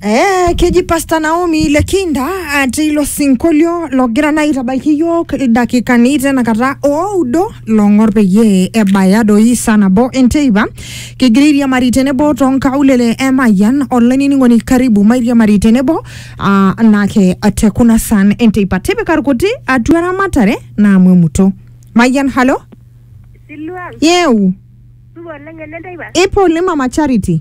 Eh, keji Pastor Naomi Lekinda ati ilo sinkolio logira naa aitabaiki iyiook ildakikani tenakata oudo long'or peyie ebaya doi saa nabo enteipa kigira airiamari tenebo toonkaulele e Mayian olainining'oni karibu mairiamari tenebo ah, naake te kuna saan enteipa tipika irkuti atua eramatare naamu emuto Mayian halo Siluan, yeu supa oleng enenteipa. ipo oleng mama Charity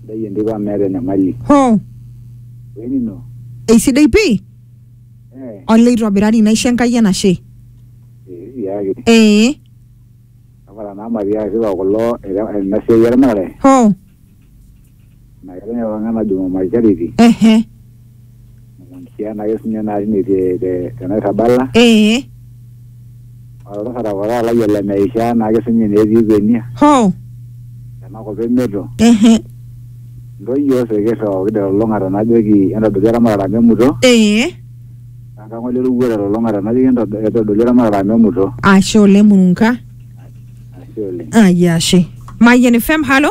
Sidai entito amu meeta enyamali. Hoo, Wenino. eisidai pii Eh, olee itobirari naisho Enkai enashe. eh, tiaki. Ee, Tapala naa Maria sipa kulo ere- ena siai eramatare. hoo, Naa ketonyorra oltung'ani najing'u my charity. ehe. Sian ake sinye naa tine te- te- tenairrabala ee oltasata kora lai ole meishaa naake sinye netii kwenia hoo tenakop emeto ehe ntoyio sikir ooki telulung'ata najoki entodoli eramatare amu emuto ee enkang ole lukuo telulung'ata najoki entodo- entodoli eramatare amu emuto ashe oleng murunka ashe oleng ayia ashe mayian fm halo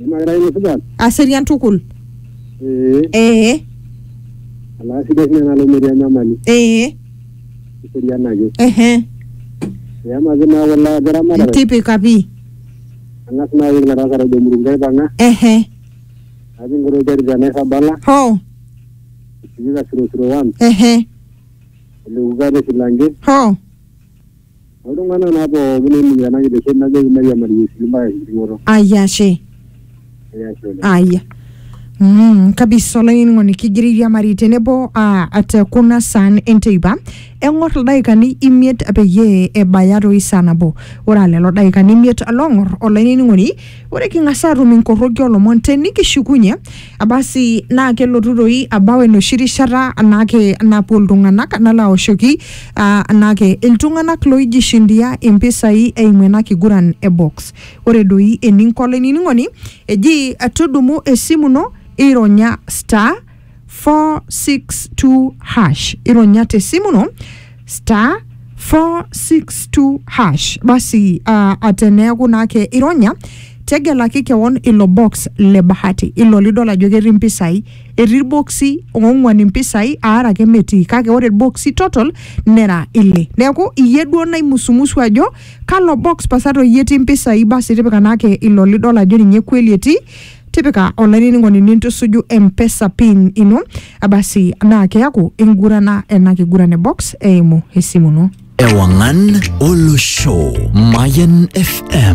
Imakira ino supat? aserian tukul Ee, ee alaa sidai sinye nalo metii enyamali. ee Eserian ake. ehe Eamaki naa kulo ajo ramatare. tipika pi Ang'as naa aoru ilo tasat ojo Murunga aipang'a. ehe Natii nkuti terit te Nairrabala. ho Etii Kasirosiro one. ehe Eleuka te Silange. ho Oltung'ana naa pooki oinining'ito ena kitesheni najoki mairiamari Yesu mpaka enkiting'oto. Ai ashe. Ee ashe oleng. Aya. Mm, kabisa olainining'oni kigira airiamari tenebo ah, te kuna saan enteipa eng'or ildaikani imiet peyie ebaya toi saa nabo ore aa lelo daikani imiet loong'or olainining'oni Ore king'as aatum inkorroki oolomon te nikishukunye abasi naa kelotu doi abau enoshi rishata anaake napuo iltung'anak nalo aoshoki ah, anaake iltung'anak looijishindia impisai eimu ena kiguran e box. Ore doi eninko olainining'oni eji tudumu esimu ino ironya star 462 hash ironya te simu no star 462 hash basi uh, ateneeku naake ironya tegelaki kewon ilo box le bahati ilo lidol ajo ketii mpisai etii irboksi oong'uan impisai aare ake metii kake ore irboksi total nera ile neeku iyie duo naimusumusu ajo kalo box pasa toi etii mpisai basi tipika naake ilo lidol ajo ninye kweli etii tipika olainining'oni nintusuju mpesa pin ino abasi naa keaku ingurana ena kiguran e box eimu esimu ino Ewangan Olosho. Mayan FM.